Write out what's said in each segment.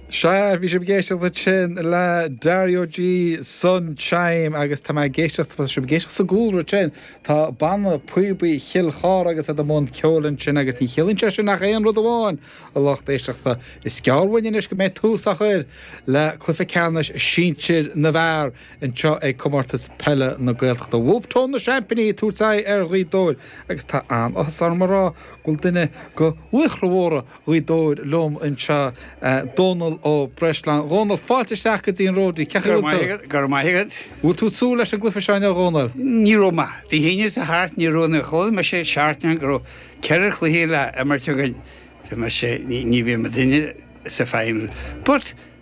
Sea, bhí sibh ag éisteacht ansin le Dario G Sunchyme agus tá mé ag éisteacht, tá sibh ag éisteacht sa gcúlra ansin, tá Banna Píobaí Chill Chartha agus iad i mbun ceoil ansin agus ní chiallaíonn sé sin ach aon rud amháin, a lucht éisteachta, is gearr uainn anois go mbeidh tús á chur le cluiche ceannais sinsir na bhfear. Anseo ag Comórtas Peile na Gaeltachta Wolfe Tone na seaimpíní ag tabhairt aghaidh ar Ghaoth Dobhair agus tá an-áthas orm a rá go bhfuil duine de laochra mhóra Ghaoth Dobhair liom anseo, Dónal Ó Breisleáin. Dhónail, fáilte isteach go dtí an Ródaí, cén chaoi a bhfuil tú? Go raibh maith agat, go raibh maith agat. Bhfuil tú ag súil leis an gcluiche seo inniu, a Dhónail? Ní raibh mé. Dé hAoine atá thart, ní raibh nuair a chuala mise seachtain go raibh ceithre chluiche le imirt againn, ní bheidh muidinne sa final but,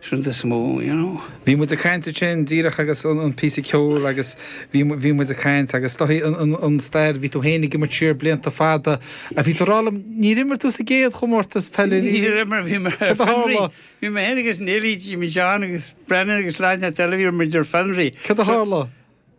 shouldn't this move, you know? Bhí muid ag caint ansin díreach agus an píosa ceoil agus bhí, bhí muid ag caint agus is dóigh an stair, bhí tú féin ag imirt siar blianta fada a bhí tú ag rá liom níor imir tú sa gcéad chomórtas peile riamh. Níor imir, bhí mé ar fionraí. Bhí mé féin agus Neilí, Jimmy Sheáin agus Brennan agus leaid na Teilí, bhí muid ar fionraí. Cad a tharla?